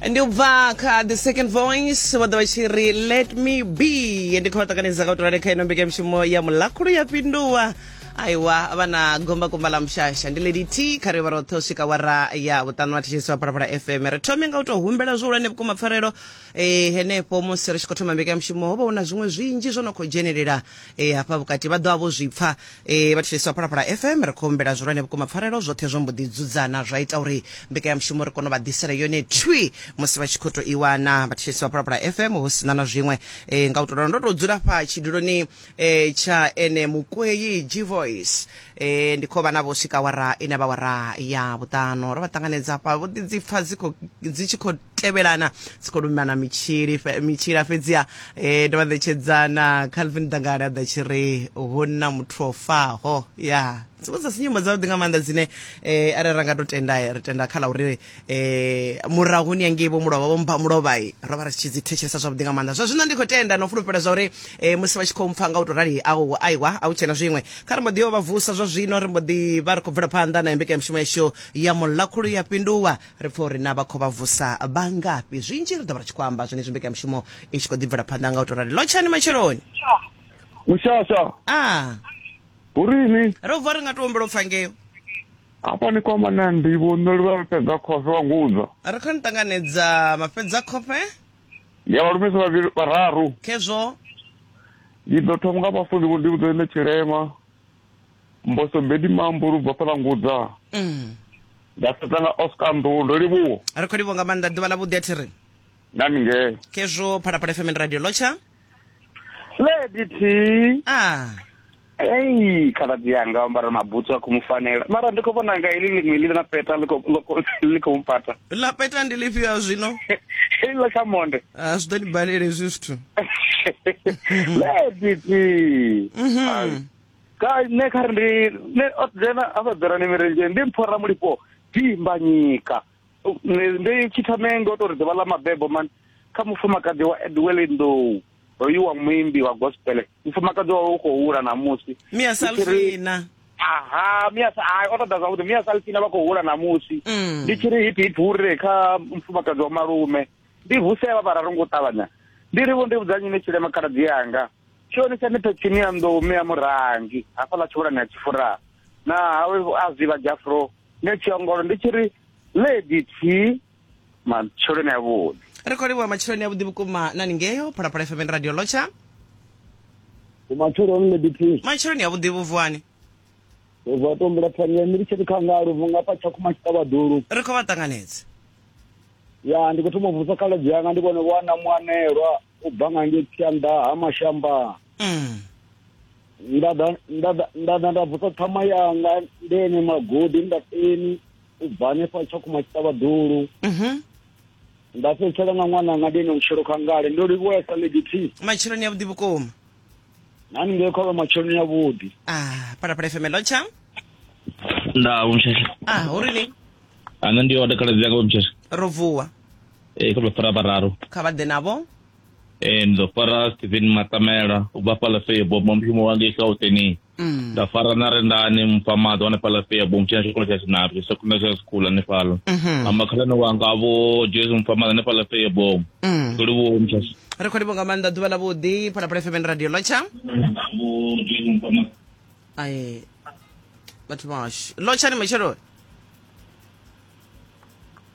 ndi u bva kha the second voice vha ḓo vha tshi ri let me be ndi khou vha ṱanganedza ka u tolale kha ino mbekanyamushumo ya mulakhulu ya fhinduwa aiwa vha na gombagomba ḽa mushasha ndi lady t kha ri vha roṱhe u swika wara ya vhuṱanu wa thetshelisiwa phalaphala fm ri thome nga u tou humbela zwihulwane vhukuma pfarelo e, henefho musi ri tshi khou thoma mbekanyamushumo ho vha hu na zwiṅwe zwinzhi zwo no khou dzhenelela e, hafha vhukati vha ḓovha vho zwi pfa e, vha thetshelesi wa phalaphala fm ri khou humbela zwihulwane vhukuma pfarelo zwoṱhe zwo mbo ḓi dzudzana zwa ita uri mbekanyamushumo ri kone u vha ḓisela yone thwi musi vha tshi khou tou i wana vha thetshelesi wa phalaphala fm hu sina na zwiṅwe e, nga u tou ralo ndo tou dzula fha tshiduloni e tsha ene mukwei gvoice e ndi khou vha navho swika wara ine vha wara ya vhuṱano ro vha ṱanganedza hafha vho ḓi dzi pfa dzi khou- dzi tshi khou tevhelana dzi khou lumana mitshili fe- mitshila fhedziha e ndo vha ṋetshedzana calvin dangale a ḓa tshi ri hu na muthu o faho ya dziṅwe dza si nyimbo dzavhuḓi nga maanḓa dzine um arali ra nga to tenda ri tenda kha ḽa uri eh murahu ni angei vho mulovha vho mpha mulovhai ro vha ri tshi dzi thetshelesa zwavhuḓi nga maanḓa zwa zwino ndi khou tenda na u fulufhela zwa uri eh, musi vha tshi khou mpfa nga u tou rali au aiwa a u tshena zwiṅwe kha ri mbo ḓi yo vha vusa zwa zwino ri mbo ḓi vha ri khou bvela phanḓa na mbekanyamushumo yashu ya mulakhulu ya fhinduwa ri pfa uri na vha khou vha vusa vha ngafhi zwinzhi ri ḓo vha ri tshi khou amba zwenezwi mbekanyamushumo i tshi khou ḓi bvela phanḓa nga u tou rali lotshani matsheloni mushasha a hu rini ro vuwa ri nga tou humbela u pfa ngeo Hafha ni kwama na ndivho nṋe luvha lu fhedza khofhe wa ngudza. A ri khou ni ṱanganedza mafhedza khofhe. Ya vhalumisa vhavhili vhararu. Khezwo. Ndi ḓo thoma nga vhafuni vho ndi vhudza ine tshilema. Mboso bedi mambo lu bva fhala ngudza. Mm. Nda fhedza nga Oscar Nḓuhu ndo livhuwa. Ri khou livhuwa nga maanḓa ḓuvha ḽa vhuḓi a thi ri. Na ni ngee. Khezwo Phalaphala FM and Radio Lotsha. lady t ah ei khaladzi yanga ambara mabutsu a khou mu fanela mara ndi khou vhona nga ili ḽiṅwe ḽi na peta ḽi khou- ḽo khou- ḽi khou mu pata lapeta ndi lifhio ya zwino iḽo kha monde Ah, zwi ḓo ni balele hezwi zwithu lady t Mhm. ka nṋe kha ri ndi nṋe o dzena a sa dzerani mirendzhe ndi mphora mulipo dimbanyika ndi tshithome ngo tori ḓuvha ḽa mabebo man kha mufumakadzi wa edwele nḓou hoyu wa muimbi wa gospel mufumakadzi wawe u khou hula namusi mia salfina aha mia hai o ṱoḓa zwavhuḓi mia salfina vha khou hula namusi mm. ndi tshi ri hipi hipi hure kha mufumakadzi wa malume ndi vusevha vhararu ngo ṱavhanya ndi ri vho ndi vhudza nyine tshilema khaladzi yanga tshioni tsha ni phethini ya nḓou mea murangi hafhaḽa tshivhulani ya tshifura na hawe a zivha jafro nṋe tshiongolo ndi tshi ri lady t matsheloni avhuḓi ri khou livhuwa matsheloni avhuḓi vhukuma nani ngeyo phalaphala fm and radio lotsha umatsheloni lady t matsheloni avhuḓi vhuvuwani ubva tombula phanya ndi tshi ri khangalo vhunga pa tshakhuma tshiṱavhaḓulu ri khou vha ṱanganedza ya ndi khou thoma u vusa khaladzi yanga ndi vhone vho ana muanelwa u bva nga ngei tshianḓa ha mashamba mm. nda ḓa nda ḓa nda ḓa nda vusa ṱhama yanga ndi ene magodi nda teni u bva hanefha tshakhuma tshiṱavhaḓulu mhm. nda fhedzisela nga ṅwana nga ndi ene vhutshilo kha ngale ndo livhuwesa lady t matsheloni ya vhuḓi vhukuma nani ngei khovha matsheloni ya vhuḓi ah, phalaphala fm lotsha nda umsheshe ah, uri ni ane ndi yo takala dziyaka umsheshe ro vuwa e kho fara bararo kha vha ḓe navho e ndo fara Steven Matamela u bva fhala fe bo mo mushumo wa ngei Gauteng mm. nda fara na rendani mfa maḓo ane fhala fe bo mutshina tshikolo tsha Sinapi sekondari tsha school ane fhala mhm. amba khalani wanga vho Jesu mfa maḓo ane fhala fe bo mm. kuli vho mutshasi ri khou livha nga maanḓa ḓuvha ḽa vhuḓi phalaphala fm radio lotsha ai vhathu vhashu lotshani matshelo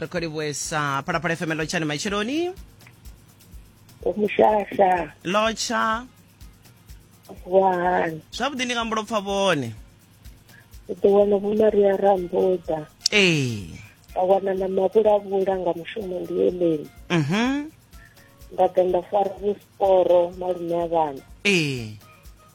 ri khou livhuesa phalaphala fm lotshani matsheloni omushasha lotsha wahani zwavhuḓi ndi nga mbulo pfa vhone u ḓo wana vho maria rambuda ee nda wana na mavhulavhula nga mushumo ndi eleni mhm nda ḓa nda fara vhusporo malume a vhana ee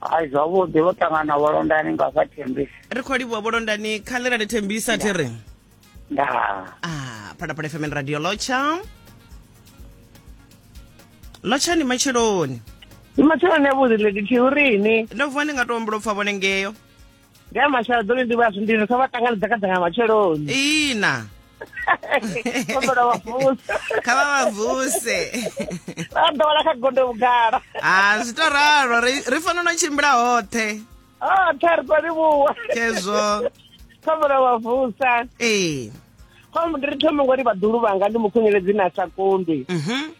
hai zwavhuḓi vho ṱangana vholondani nga fha thembisa ri khou livhuwa vholondani kha ḽi rali thembisa thi ri nda ah phalaphala fm radio lotsha lotsha ni matsheloni ndi matsheloni avhuḓi lady thiurini ndo vuwa ndi nga to ombula u pfa vhone ngeyo ndi a mashalo ḓo ndi vha zwindini kha vha ṱanganedza kha dzanga matsheloni ina kombela vha vuse kha vha vha vuse vha ḓowela kha gondo vhugala a zwi to ralo ri fanela no tshimbila hoṱhe hoṱhe ri to livhuwa khezwo kombela vha vusa ee khombo ndi ri thome ngori vhaḓulu vhanga ndi mukhunyeledzi na sa kundwi mhm.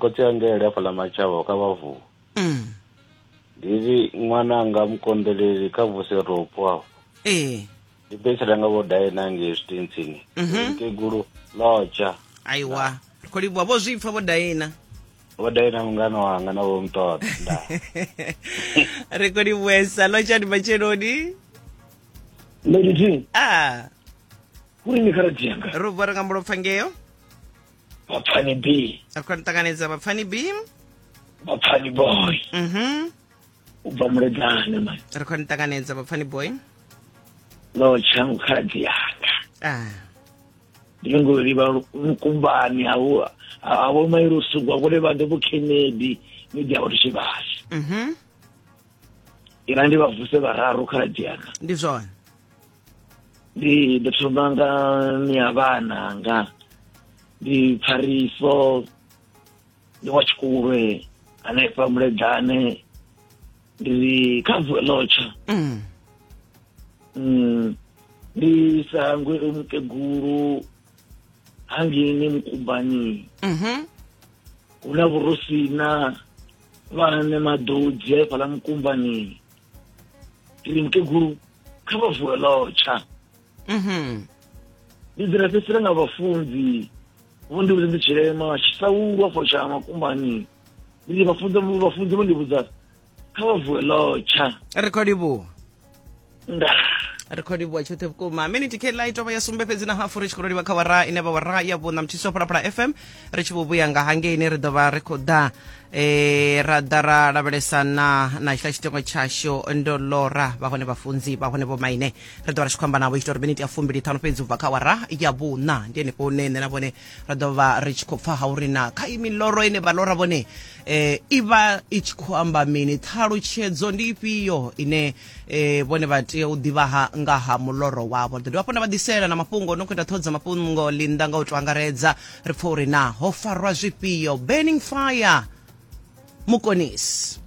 khotsi angele hafhaḽa matshavha kha vhavu mm. ndi ri ṅwana anga mukonḓeleli kha vuse ropo afho ee ndi betsela nga vho dae na ngei zwitentsini mhm. mkegulu lotsha aiwa ri khou livhuwa vho zwi pfa vho daina vho daina mungana wanga na vho muṱoḓa nda ri khou livhuesa lotshani matsheloni lady t a ah. kuri ni kha radio yanga ro vhora nga mulopfa ngeyo bapfani b afika ni ṱanganedza vhapfani b bapfani boy mhm u bva muleḓane mani ri khou ni ṱanganedza vhapfani boy no tshangu khaladzi yanga ah ndi ngo livha mukumbani hawo hawo mairi usugwa kule vha ndo vhukhenedi ni dia vhathu tshivhasi mhm ina ndi vha vuse vhararu khaladzi yanga ndi zwone ndi ndo thoma nga ni ya vhana nga ndi pfariso ndi wa tshikulwe hanefha muledane ndi kha vuwe lotsha mm. mm. ndi sangwe mukegulu hangini mukubani mm -hmm. huna vhurusina vhane maḓodzi haefhala mukumbani ri nke guru kha vha vuwe lotsha mhm. ndi dzira fhedzisela nga vhafunzi vho ndi vhudza ndi tshilema tshisaulwa fo tsha makumbani ndi vhafunzi vhafunzi vho ndi vhudza kha vha vuwe lotsha ri khou livhuwa nda ri khou livhuwa tshoṱhe vhukuma miniti kela i tovha ya sumbe fhedzi na hafu ri tshi khou livha kha wara ine vha wara ya vhuṋa muthiso phalaphala fm ri tshi vho vhuya nga hangeini ri ḓo vha ri khou ḓa e ra ḓa ra lavhelesa na na tshila tshitengo tshashu ndo lora vha hone vhafunzi vha hone vhomaine ri ḓo vha ri tshi khou amba navho itela uri miniti ya fumbili ṱhanu fhedzi ubva kha wara ya vhuṋa ndi henefho hune nṋe na vhone ra ḓo vha ri tshi khou pfa ha uri na kha imiloro ine vha lora vhone um i vha i tshi khou amba mini ṱhalutshedzo ndi ifhio ine e vhone vha tea u ḓivha ha nga ha muloro wavho ri ḓo dovha hafhu na vha ḓisela na mafhungo no khou ita ṱhoho dza mafhungo linda nga u to angaredza ri pfa uri na ho farwa zwifhio burning fire mukonisi